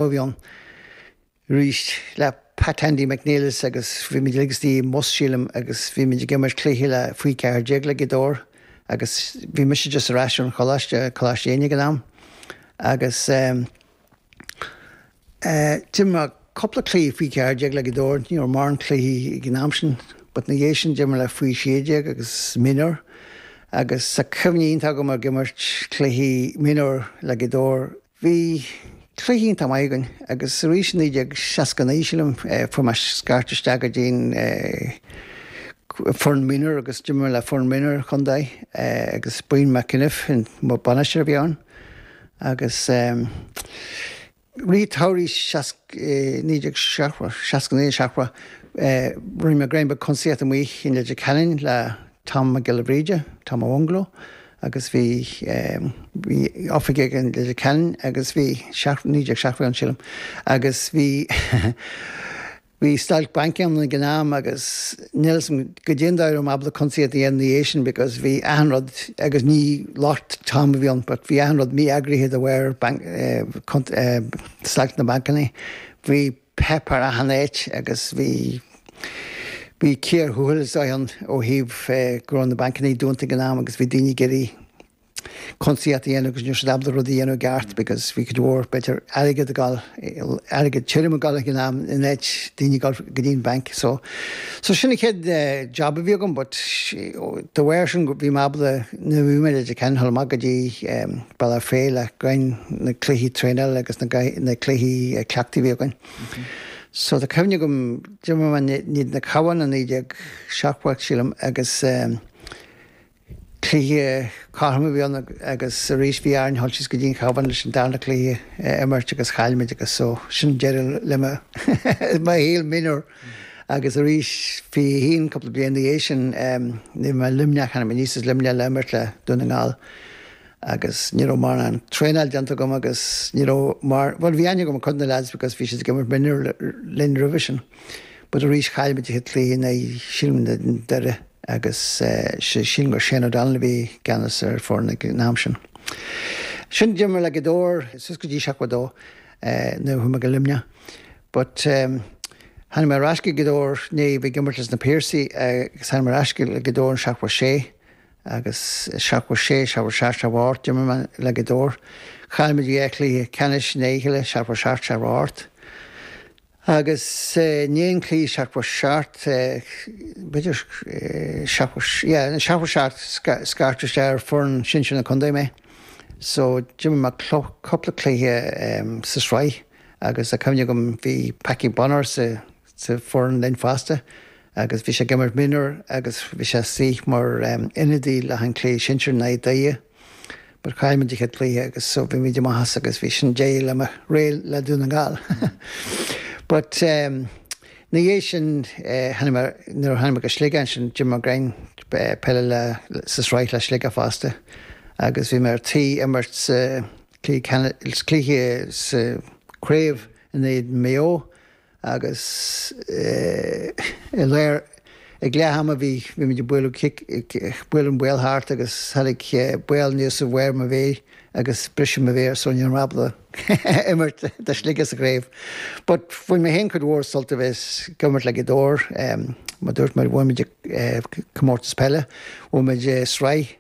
Mo mhian, arís, le Pat Andy McNeilis agus bhí muid uilig istigh i mbus, sílim, agus bhí muid ag imirt cluichí le faoi cheathair déag le Gaoth Dobhair agus bhí mise just ar ais ón choláiste, Coláiste Éinne ag an am, agus ehm. eh, d'imir cúpla cluichí faoi cheathair déag le Gaoth Dobhair, ní raibh mórán cluichí ag an am sin, but ina dhiaidh sin d'imir le faoi sé déag agus minor agus tá cuimhne iontach agam ag imirt cluichí minor le Gaoth Dobhair, Bhí cluichí iontach maith againn, agus arís i 1969, sílim, fuair mé scairt isteach go dtí'n foireann mionúr agus d'imir mé le foireann mionúr an chontae agus Brian McEniff an bainisteoir a bhí ann agus i rith samhraidh naoi déag seasca naoi seachtó rinne mé greim beag cuntasaíocht amuigh i Leitir Ceanainn le Tom Mac Giolla Bhríde, Tom Ó Mhungó. agus bhí, bhí oifig aige i Leitir Ceanainn agus bhí seacht, 1970 ann sílim agus bhí, bhí stailc bainc ann ag an am agus níl 'fhios a'm caidé an dóigh a raibh mé ábalta cuntasaíocht a dhéanamh ina dhiaidh sin because bhí achan rud agus ní locht Tom a bhí ann but bhí achan rud mí-eagraithe de bharr banc, eh, stailc na mbancannaí. Bhí. páipéar achan áit agus bhí, bhí cíor thuathail is dóigh ann ó thaobh go raibh na bancannaí dúnta ag an am agus bhí daoine ag iarraidh cuntasaíocht a dhéanamh agus ní raibh siad ábalta rud a dhéanamh i gceart because bhí cuid mhór, b'fhéidir, airgead ag gabháil, airgead tirim ag gabháil ag an am in áit daoine ag gabháil go dtí an bank so, so sin an chéad job a bhí agam but de bharr sin bhí mé ábalta, nuair a bhí mé i Leitir Ceanainn, chuaigh mé go dtí, Bealach Féich le haghaidh na cluichí traenála agus na cluichí cleachtaidh a bhí againn. So tá cuimhne agam, d'imir mé in éadan an Chabháin i naoi déag seachtó, sílim, agus cluiche cothrom a bhí ann agus arís bhí orainn dul síos go dtí an Chabhán leis an darna cluiche a imirt agus chaill muid agus so sin deireadh le mo mo shaol mionúr. Agus arís fiche haon cúpla bliain ina dhiaidh sin, eh, nuair a bhí mé i Luimneach, tháinig mé aníos as Luimneach le imirt le Dún na nGall. agus ní raibh mórán traenáil déanta agam agus ní raibh mór, bhuel bhí aithne agam ar cuid de na leaids because bhí siad ag imirt mionúir linn roimhe sin, but arís chaill muid a thit léi in aghaidh Chill na nDoire agus sílim gur Shane O'Donnell a bhí i gceannas ar foireann ag an am sin. Sin d'imir le Gaoth Dobhair suas go dtí seachtó dó nuair a chuaigh mé go Luimneach but tháinig mé ar ais go Gaoth Dobhair, i ndiaidh a bheith ag imirt le na Piarsaigh agus tháinig mé ar ais go Gaoth Dobhair i seachtó sé agus seachtó sé, seachtó seacht, seachtó hocht, d'imir mé le Gaoth Dobhair. Chaill muid dhá chluiche ceannais i ndiaidh a chéile, seachtó seacht, seachtó hocht, agus i ndiaidh an chluiche seachtó seacht, b'fhéidir, seachtó, yeah, in seachtó seacht scairteadh isteach ar foireann sinsir na contae mé. So, d'imir mé cúpla cluiche sa sraith agus tá cuimhne agam bhí Packie Bonner sa sa foireann linn fosta agus bhí sé ag imirt mionúr agus bhí sé istigh mar ionadaí le haghaidh an cluiche sinsear in aghaidh Doire but chaill muid an chéad cluiche agus so bhí muid amach as agus bhí sin deireadh le mo ré le Dún na nGall but ina dhiaidh sin tháinig mé nuair a tháinig mé go Sligeach ansin d'imir mé beagán peile le sa sraith le Sligeach fosta agus bhí mé ar tí imirt sa cluiche cluiche sa craobh in aghaidh Maigh Eo Agus i lár ag leath ama bhí muid ag bualadh cic, ag bualadh an ball thart agus tháinig an ball anuas ar bharr mo mhéir agus briseadh mo mhéar so ní raibh mé ábalta imirt do Shligeach sa craobh. But bhain mé féin cuid mhór sult a bheith ag imirt le Gaoth Dobhair. Mar dúirt mé bhain muid comórtas peile, bhain muid sraith,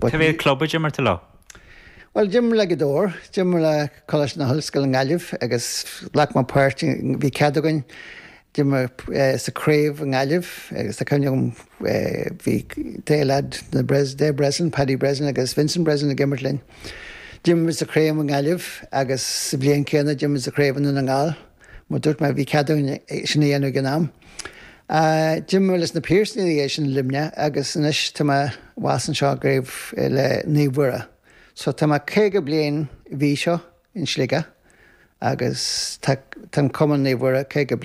Cad é an club a d'imir tú leo? Bhuel, d'imir le Gaoth Dobhair, d'imir le Coláiste na hOllscoile i nGaillimh agus ghlac mé páirt, bhí cead againn, d'imir sa craobh i nGaillimh agus tá cuimhne agam bhí dhá lead na de Breslin, Paddy Breslin agus Vincent Breslin ag imirt linn. D'imir muid sa chraobh i nGaillimh agus sa bhliain céanna d'imir muid sa chraobh i nDún na nGall. Mar dúirt mé, bhí cead dúinn sin a dhéanamh ag an am. D'imir leis na Piarsaigh ansin i Luimneach agus anois tá mé abhus anseo i gCraobh le Naomh Mhuire. So tá mé caoga bliain mhí seo in Sligeach agus tá an Cumann Naomh Mhuire caoga bliain.